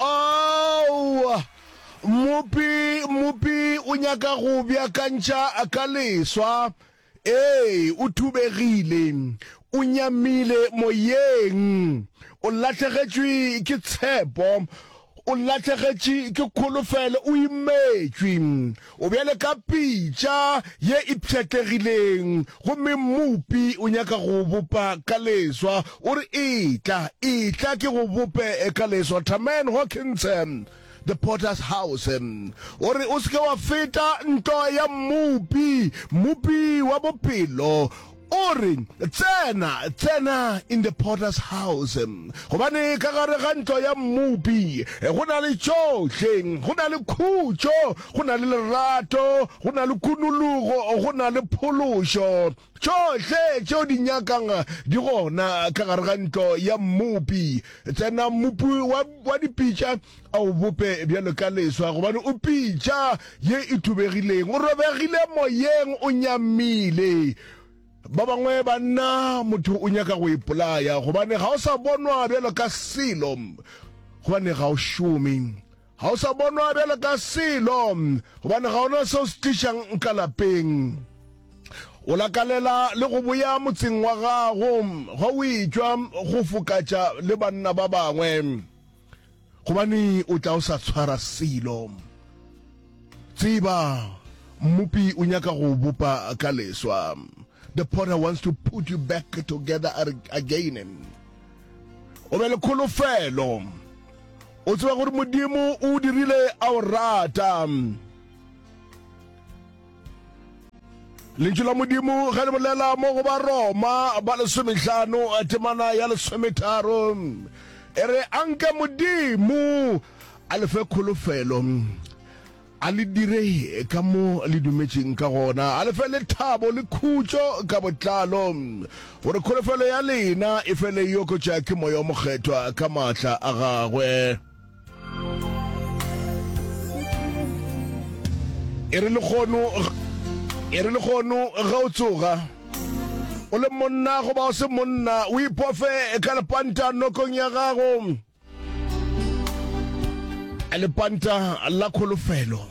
Aowa, Mmopi, Mmopi o nyaka go beakantšha ka leswa. Ee, o thubegile, o nyamile moyeng, o lahlegetšwe ke tshepo, o lahlegetše ke kholofelo, o imetšwe. O bjale ka pitša ye e pšhatlegileng, gomme Mmopi o nyaka go o bopa ka leswa. O re, Etla, etla ke go bope ka leswa, Taman Hawkins, The Potter's House. O re, O se ke wa feta nto ya Mmopi, Mmopi wa bophelo. O re, Tsena, tsena in the potter's house, gobane ka gare ga ntlo ya mmopi go na le tšohle, go na le khutšo, go na le lerato, go na le kunologo, go na le phološo. Tšohle tšeo di nyakang di gona ka gare ga ntlo ya mmopi. Tsena, mmopi wa, wa dipitša. A o bope bjalo ka leswa, gobane o pitša ye e thubegileng, o robegile moyeng, o nyamile. Ba bangwe ba nna motho o nyaka go ipolaya, gobane ga o sa bonwa bjalo ka selo, gobane ga o šome. Ga o sa bonwa bjalo ka selo, gobane ga ona seo se tlišang ka lapeng. O lakalela le go boya motseng wa gago, ga o itšwa go fokatša le banna ba bangwe. gobane o tla o sa tshwara selo tseba mmupi o nyaka go bopa ka leswa the potter wants to put you back together again o be le kholofelo o tseba gore modimo o dirile a o rata lentšu la modimo ge le bolela mo go baroma ba lesomehlano a temana ya lesometharo e re a nke modimo a lefe kholofelo a le dire ka mo le dumetseng ka gona a lefe lethabo le khutšo ka botlalo gore kholofelo ya lena e fele yokotša ke moya o mokgethwa ka maatla a gagwe e re lekgono e re lekgono ga o tsoga o le monna goba o se monna o ipofe ka lepanta nokong ya gago lepanta la kholofelo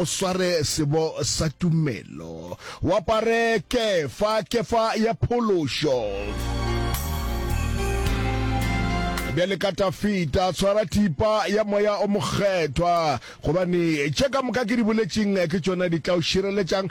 o sware sebo sa tumelo o apare kefa kefa ya phološo bjale ka tafita tshwara thipa ya moya o mokgethwa gobane tše ka moka ke di boletšeng ke tšona di tla o šireletšang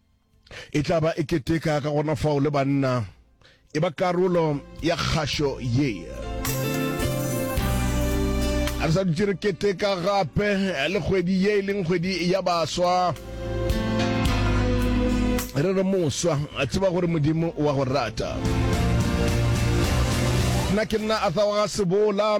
E tla ba e keteka ka gona fao le banna e ba karolo ya kgašo ye. A re sa dutše re keteka gape le kgwedi ye e leng kgwedi ya baswa re re moswa a tseba gore modimo wa go rata nna ke nna arthur wa ga sebola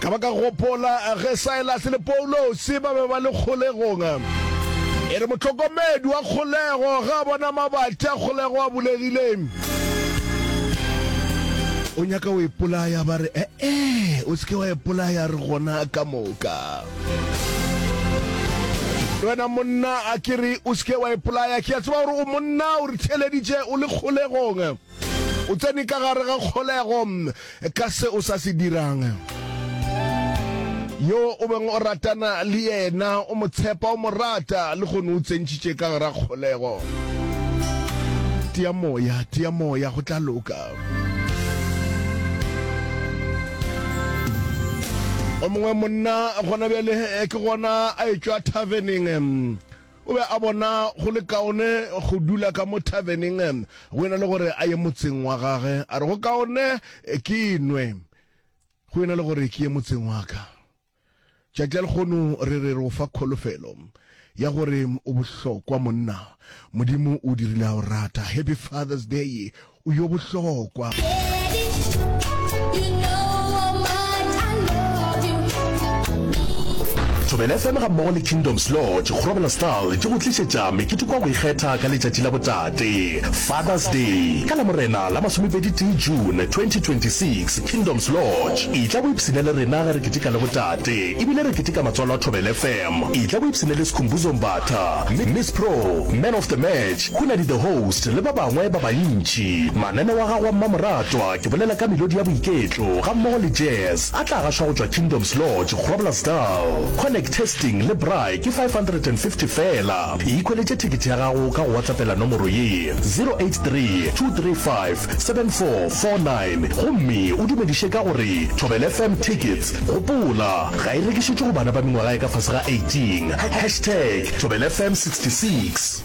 ka ba ka gopola ge saelase le poulose ba be ba le kgolegong e re motlhokomedi wa kgolego ga a bona mabatla kgolego a bulegile o nyaka o ipolaya ba re ee o seke wa ipolaya re gona ka moka le wena monna a ke re o seke wa ipolaya ke a tseba gore o monna o re theleditše o le kgolegong O tsene ka gare ga kgolego ka se o sa se dirang. Yo o beng o ratana le yena, o mo tshepa, o mo rata, le kgono o tsentšhitše ka gara kgolego. Tia moya, tia moya, go tla loka. O mongwe monna gona bjale ke gona a etšwa thaveneng. O be a bona go le kaone go dula ka mo thaveneng go e na le gore a ye motseng wa gage. A re, Go kaone ke nwe go e na le gore ke ye motseng wa ka. Tšatši la lekgono re re re o fa kholofelo ya gore o bohlokwa monna. Modimo o dirile a o rata. Happy Father's Day O yo bohlokwa. Thobela FM ga mmogo le Kingdoms Lodge Grobela Style di go tlišetša meketeko ya go ikgetha ka letšatši la botate, Father's Day, ka Lamorena la masomepedi tee June 2026. Kingdoms Lodge, etla o ipshine le rena ge re keteka le botate ebile re keteka matswalo a Thobela FM. Etla o ipshine le Skhumbuzo Mbatha, Miss Pro, Man of the Match, Khunadi The Host le ba bangwe ba bantši. Mananeo a gagwe a mmamoratwa, ke bolela ka melodi ya boiketlo gammogo le jazz, a tla gašwa go tšwa Kingdoms Lodge, Groblersdal. Connect Testing le Braai ke 550 feela. Ikhweletše thekete ya gago ka go WhatsAppela nomoro ye, 0832357449 gomme o dumediše ka go re, Thobela FM Tickets, gopola, ga e rekišetšwe go bana ba mengwaga e ka fase ga 18, hashtag Thobela FM 66.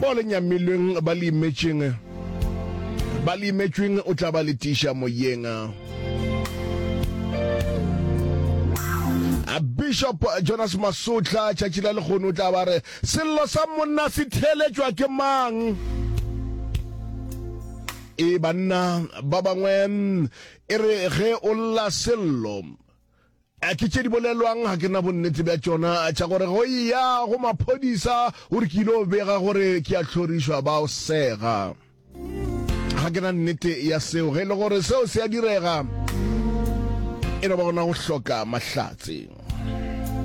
Bao le nyamilweng ba le imetšeng, ba le imetšweng o tla ba le tiša moyeng. A Bishop Jonas Masotla tšatši la lekgono o tla ba re sello sa monna se theeletšwa ke mang? E banna ba bangwe e re ge o lla sello A ke tše di bolelwang? Ga ke na bonnete bja tšona tša gore go eya go maphodisa gore ke ile go bega gore ke a hlorišwa ba o sega. Ga ke na nnete ya seo. Ge e le gore seo se a direga, e no ba gona go hloka mahlatse.